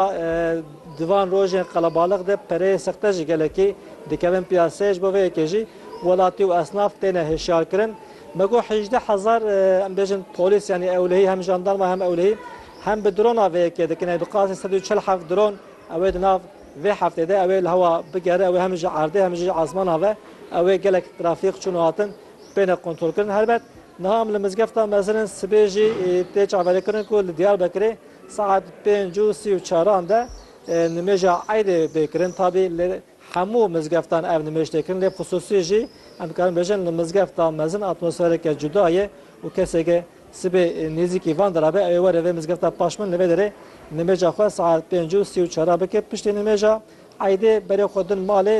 Di van rojên qelebalix de pereyên sexte ji gelekî dikevin piyaseyê. Ji bo vê yekê jî welatî û esnaf têne hişyarkirin. Me got hejdeh hezar em bêjin polîs yanî ewlehî hem jandarma hem ewlehî hem bi drona vê yekê dikin. Yanî bi qasî sed û çil heft dron ew ê di nav vê heftê de ew ê li hewa bigere. Ew ê hem ji erdê hem jî ji esmana ve ew ê gelek trafîk çûn û hatin bêne kontrolkirin. Helbet Niha em li mizgefta mezin in sibê jî tê çavêrkirin ku li Diyarbekirê saet pênc û sî û çaran de nimêja eydê bê kirin. Tabî li hemû mizgeftan ev nimêj tê kirin lê xisûsî jî em dikarin bêjin li mizgefta mezin atmosfereke cuda ye û keseke sibê nêzîkî van de rabe ew ê were vê mizgefta paş min li vê derê nimêja xwe saet pênc û sî û çaran bike piştî nimêja Eydê berê xwe din malê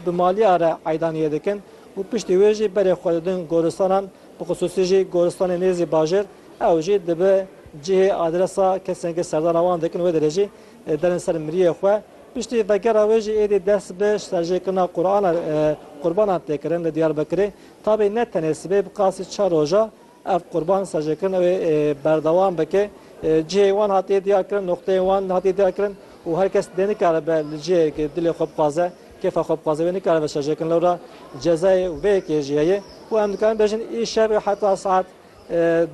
bi maliya re eydaniyê dikin û piştî wê jî berê xwe didin goristanan bi xisûsî jî goristanê nêzî bajêr ew jî dibi cihê adresa kesên ku serdana wan dikin wê derê jî derin ser miriyê xwe piştî vegera wê jî êdî dest bi serjêkirina qurbanan tê kirin li Diyarbekirê tabî ne tenê sibê bi qasî çar roja Ev qurban sajekirin ew ê berdewam bike. Cihê wan hatiye diyarkirin, noqteyên wan hatiye diyarkirin û her kes dê nikaribe li cihekê dilê xwe bixwaze, kêfa xwe bixwaze wê nikaribe sajekirin. Lewra cezayê vê yekê jî heye û em dikarin bêjin îşev heta saet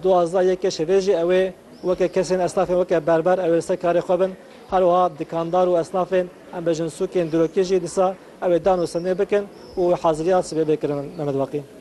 duwazdeh yê kêşê vê jî ew ê weke kesên esnafên weke berber ew ê li ser karê xwe bin. Her wiha dikandar û esnafên em bêjin sûkên dîrokî jî dîsa ew ê dan û senê bikin û heziriya sibê bê kirin. Mehmet Waqî.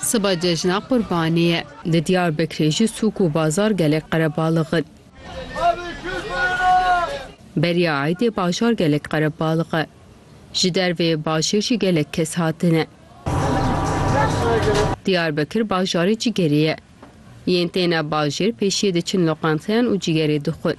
Siba cejna Qurbanê ye. Li Diyarbekirê jî sûk û bazar gelek qerebalix in. Beriya eydê bajar gelek qerebalix e. Ji dervê bajêr jî gelek kes hatine. Diyarbekir bajarê cîgerê ye. Yên têne bajêr pêşiyê diçin loqanteyan û cîgerê dixwin.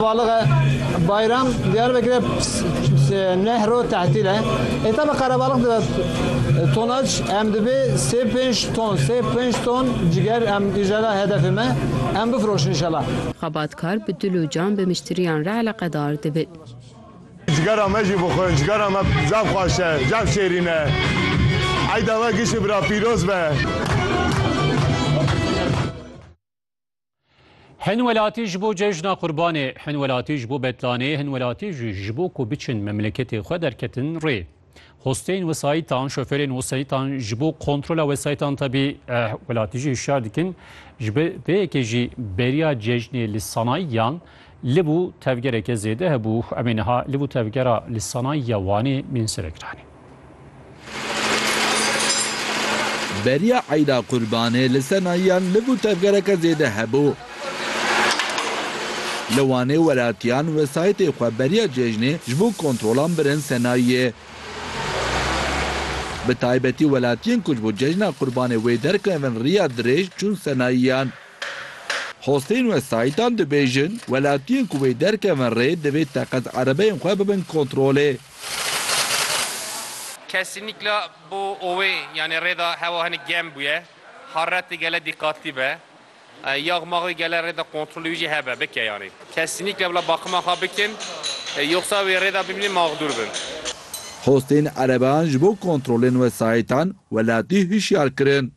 Balixe Bayram, Diyarbekirê nehro tehtîl e. Hêta bi qerebalix dibe tonac em dibê sê pênc ton sê pênc ton ciger em îjara hedefê me em bifiroşin inşallah. Xebatkar bi dil û can bi miştiriyan re eleqedar dibin. Cigera me jî bixwin, cigera me zaf xweş e, zaf şêrîn e. Eyda we giştî bira pîroz be. Hin welatî ji bo cejna qurbanê, hin welatî ji bo betlanê, hin welatî jî ji bo ku biçin memleketê xwe derketin rê. Hosteyên wesayîtan, şoferên wesayîtan ji bo kontrola wesayîtan tebî eh, welatî jî hişyar dikin. Ji bi vê yekê jî beriya cejnê li sanayiyan li bû tevgereke zêde hebû. Em ê niha li bû tevgera li sanayiya Wanê mînsirekiranê. Beriya Eyda Qurbanê li ser nahiyan liv û tevgereke zêde hebû. Li Wanê welatiyan wesayîtê xwe beriya cejnê ji bo kontrolan birin ser nahiyê. Bi taybetî welatiyên ku ji bo cejna Qurbanê wê derkevin riya dirêj çûn ser nahiyan. Hostên wesayîtan dibêjin, welatiyên ku wê derkevin rê divê teqez erebeyên xwe bibin kontrolê. Kesînikla bo owê yanê rêda hewa hinik germ bûye. Harretê gele dîqatlî be. Yax max wê gele rêda kontrolê wî jî hebe, bike yanê. Kesînikla bila baqima xwe bikin, yoxsa wê rêda bimînin maxdûr bin. Hostên erebeyan ji bo kontrolên wesayîtan welatî hişyar kirin.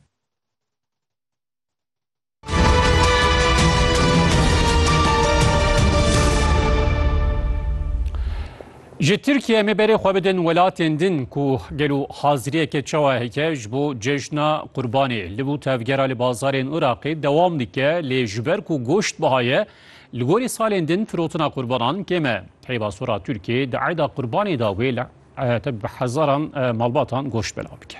Ji Tirkiye me berê xwe bidin welatên din ku gel û haziriyeke çawa heke ji bo cejna qurbanê li bû tevgera li bazarên Iraqê dewam dike lê ji ber ku goşt bihaye li gorî salên din firotina qurbanan kême heyba sora Tirkiye di eyda qurbanê da wê li bi hezaran malbatan goşt belav bike.